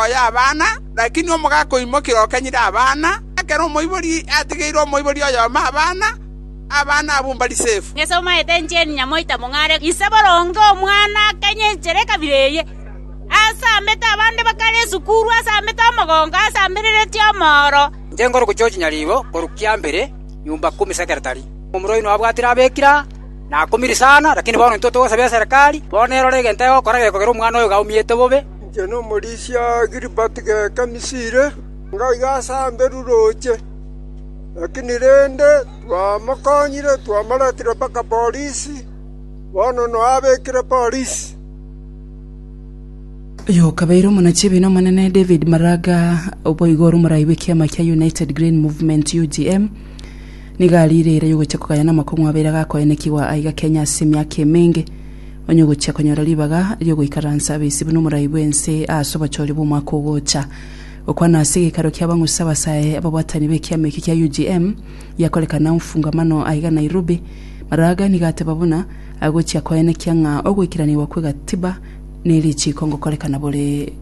oye abana, lakini omogaka oimokia okenyire abana. Ekero omoibori atigeire omoibori oyomo abana, abana abwo mbari sefu. Ng'ese omaete encheni nyamoita mong'are ise boronge omwana akenye enchera ekabira eye. Asambete abande bakare esukuru, asambete omogongo, asambereretie omooro. Inche nkorugucha ochinyaribo korwa kiambere nyumba kumi sekeretari. Omorwai oino abwatire abekira na akumiri sana, lakini bono intwe togosaba eserekari, bono erore egento egokora gekogera omwana oyo gaumete bobe. Inche nomorisia Gilbert Geka Misiri, ngaiga ase Anderu roche, lakini rende twamokonyire, twamoretire mpaka Polisi, bono noyo abekire Polisi.” Oyokabeire omonachie-ebiina Omonene David Maraga boigo ore omoraai bw'ekiama kia United Green Movement, UGM, Nigo ariire eira y'ogochia kogaya namakong'u abeire agakoenekigwa aiga Kenya ase emiaka emenge, onye ogochia konyora ribaga ri'ogoikaransa abaisi buna omorai bw'ense aase obochori bw'omwaka ogocha. Gokwana ase gekaro kia bang'usi abasae ababwatani b'ekiama eki kia UGM giakorekana Mfungamano aiga Nairobi, Maraga nigo ateba buna agochia koenekia ng'a ogoikiranigwa kw'egatiba nerichiiko ngokorekana bore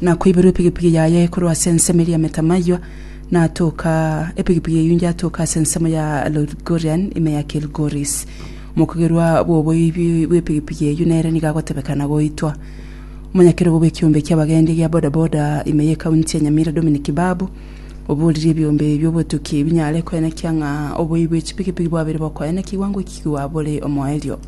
na koiberwa epigipigi yaye korwa ase ensemo eria Metamayua, na atoka epigipigi eyio inge atoka ase ensemo ya Lodgorian, ime ya Kilgoris. Omokogerwa bw'oboibi bw'epigipigi eyio nere nigo agotebeka na goitwa. Omonyakerogo bw'ekiombe ki'abagendi gia bodaboda ime y'ekaunti ya Nyamira Dominic Babu, oboririe ebiombe bi'obotuki binyare koenekia ng'a oboibi bw'echipigipigi bwabire bokoenekigwa ngoikigwa bore omoerio.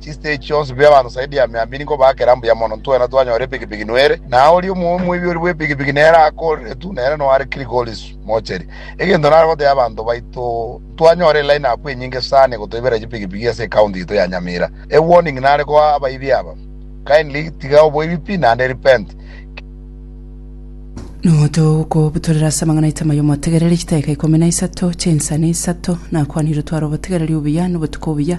Chistage chionsi bire abanto zaidi ya mia mbiri nigo bagera mbuya mono. Ntwena twanyora epikipiki nwere, na oria omoibi bw'epikipiki nere akooreretwe, nere noare Kilgoris mocheri. Egento nare gotebia abanto baito, ntwanyora eline up enyinge sana egotoibera chipikipiki ase ecounty yaito ya Nyamira. E warning nare koa abaibi aba, kindly tiga oboibi pi naende repent. Notogokobutorera ase amang'ana aito amaya omotegereri chidaeka ikomi na isato chinsani isato. Nakwanire otware obotegereri obuya nobotuko obuya.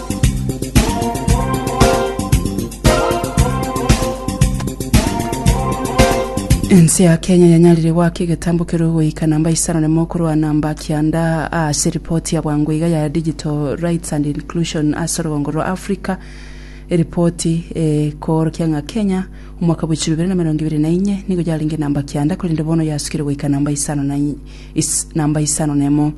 Ense ya Kenya yanyarire goaka egetambo keria goika namba isano na emo korwana mba kianda ase ripoti ya bwango iga ya Digital Rights and Inclusion ase orogongo rwa Africa. Eripoti ekoorokia ng'a Kenya omwaka bw'echiko bibere na emerongo ebere na inye nigo yarenge namba kianda korende bono yasukire goika namba isano na namba isano na emo.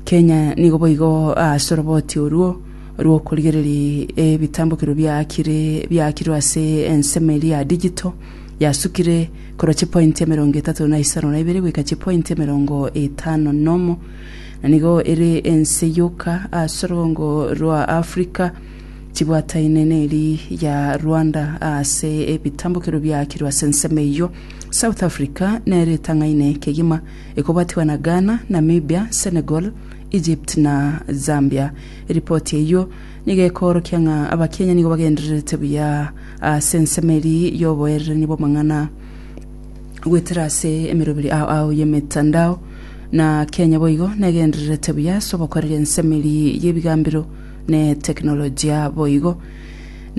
Kenya nigo boigo ase oroboti orwo rw'okorigereria ebitambokero biaakire biaakirwe ase ensemo eria ya digital yasukire korwa chipointi emerongo etato na isano na ibere goika chipointi emerongo etano na omo, na nigo ere ense yoka ase orogongo rwa Africa chibwataine neri ya Rwanda ase ebitambokero biaakirwe ase ensemo eyio. South Africa nero etang'aine kegima Ekobatigwa na Ghana, Namibia, Senegal, Egypt na Zambia. Eripoti eyio nigo ekoorokia ng'a Abakenya nigo bagendererete buya ase ensemo eria y'oboererania bw'amang'ana goetera ase emeroberi ao ao y'emetandao, na Kenya boigo negendererete buya ase obokoreria ensemo eria y'ebigambero ne teknolojia boigo.